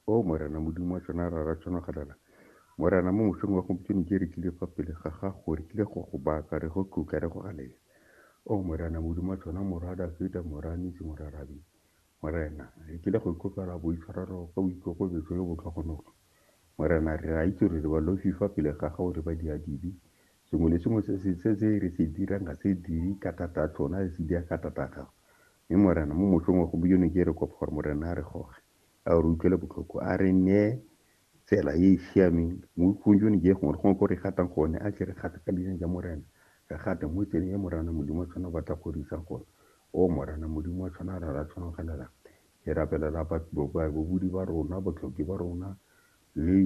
O Morena Modimo wa tsona ra ra tsona galala. Morena mo mosong wa gompieno ke re tlile fa pele ga gago, re tlile go go baka, re go tlotla, re go galela. O Morena Modimo wa tsona morwa Dafita, morwa Nisi, morwa Rabi. Morena, re tlile go ikopela boitshwarelo ka boikokobetso yo botlhogonolo. Morena, re a itse gore re balofi fa pele ga gago, re ba diadibi. Sengwe le sengwe se re se dirang ga se dire ka thata tsona, re se dira ka thata gago. Mme Morena, mo motlhong wa gompieno ke re kopa gore Morena a re goge, a re utlwele botlhoko, a re neye tsela e e siameng mo botlhong jone je gongwe le gongwe ko re gatang gone, a tle re gate ka leina ja Morena, re gate mo tseleng e Morana Modimo wa tshwana o batla go re isang gone. O Morana Modimo wa tshwana ra ra tshwanogelelang, ke rapelela babudi ba rona, botlhoki ba rona, le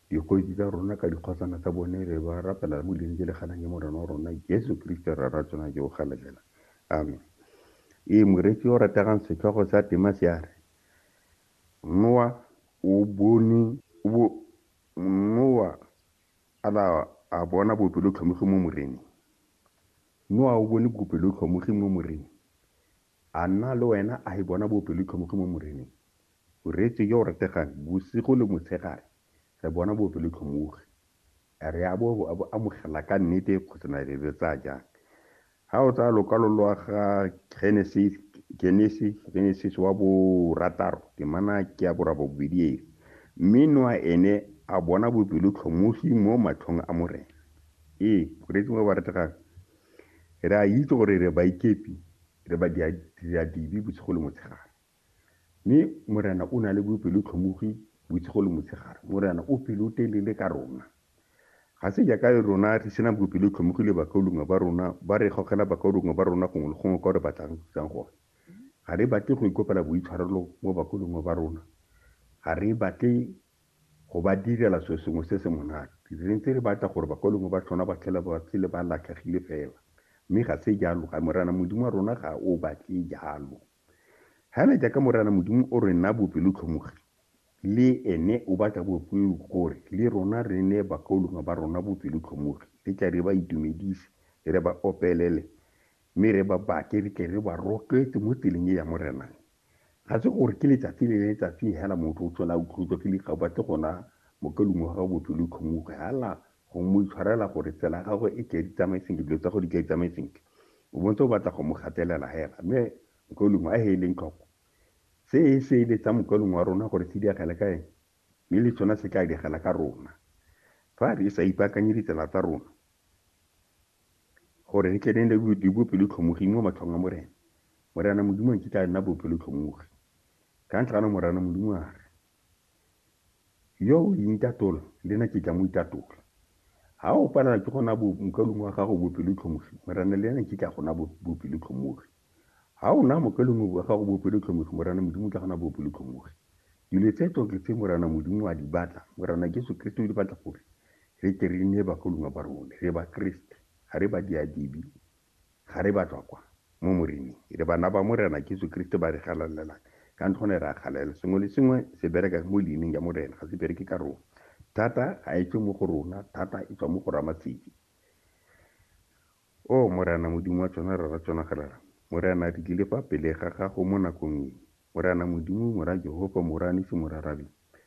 Dikgosi tsa rona ka dikgosana tsa bone re ba rapela le mo dileng tse le ganang ke Morena wa rona Jesu Kriste Rra ra tsona jo o galelela. Amen. Ee, moreetsi yo o rategang setlhogo sa tema se a re, Noa o bone o bo Noa a la a bona bopelotlhomogi mo Moreneng. Noa o bone bopelotlhomogi mo Moreneng. A nna le wena a e bona bopelotlhomogi mo Moreneng? O reetse yo o rategang bosigo le motshegare, re bona bopelotlhomogi. A re a bo a bo amogela ka nnete kgotsa na re bo tsaya jang? Ga o tsaya lokwalo lwa ga Genese, Genesis wa borataro, temana ke ya borabobedi e re, Mme Noa ene a bona bopelotlhomogi mo matlhong a Morena. Ee, o reetse ba ba rategang, re a itse gore re baikepi, re badiadibe bosigo le motshegare. Mme Morena o na le bopelotlhomogi bosigo le motshegare. Morena o pelotelele ka rona. Ga se jaaka rona re sena bopelotlhomogi le bakaulengwe ba rona ba re gogela bakaulengwe ba rona gongwe le gongwe kwa re batlang go tsang gone. Ga re batle go ikopela boitshwarelo mo bakaulengwe ba rona. Ga re batle go ba direla selo sengwe se se monate. Re ntse re batla gore bakaulengwe ba tlhona ba tlhela ba phele ba latlhegile fela. Mme ga se jalo. Ga Morena Modimo wa rona ga o batle jalo. Hana jaaka Morena Modimo o re naa bopelotlhomogi, le ene o batla bopelotlhomogi gore le rona re nee bakaulengwe ba rona bopelotlhomogi. Re tle re ba itumedise, re ba opelele, mme re ba bake re tle re ba rotloetse mo tseleng e ya Morena. Ga se gore ke letsatsi le letsatsi hela motho o tlhola a utlweletswa ke dikgao ba tle go naa mokaulengwe wa gagwe bopelotlhomogi. Hala, Gongwe mo itshwarela gore tsela ya gagwe e tle di tsamaye sentle, dilo tsa go di tle di tsamaye sentle. O bontse o batla go mo gatelela hela. Mme Mokaulengwe a he eleng tlhoko. Se e se ele tsa Mokaulengwe wa rona gore se diagele ka ene, mme le tsona se tla diagela ka rona. Fa re sa ipaakanye ditsela tsa rona, gore re tle ne le di bopelotlhomoging mo matlhong a Morena, Morena Modimo a nkitla a nna bopelotlhomogi. Ka ntlha ana Morena Modimo a re, Yo o intatola, le na ke tla mo itatola. Ha o palelwa ke go na bo mokalung wa gago bopelotlhomogi, Morena le ena ke tla go na bopelotlhomogi. Ha o na mokalung wa gago bopelotlhomogi, Morena Modimo tla go na bopelotlhomogi. Dilo tse tsotlhe tse Morena Modimo a di batla, Morena Jesu Kriste o di batla gore re tle re nne bagolongwa ba rone, re ba Kriste, ga re ba diadibi. Ga re ba tswa kwa, mo Moreneng. Re bana ba Morena Jesu Keresete ba re galalelang. Ka ntlha gone re a galalela. Sengwe le sengwe se bereka mo leineng ya Morena, ga se bereke ka rona. Thata ga e tswe mo go rona, thata e tswa mo go Ramatseki. Oh, Morena Modimo wa tsona, Rara tsona, ga Rara. Morena, re tlile fa pele ga Gago mo nakong e. Morena Modimo, Mora Jehofa, Mora Nisi, Mora Rabi.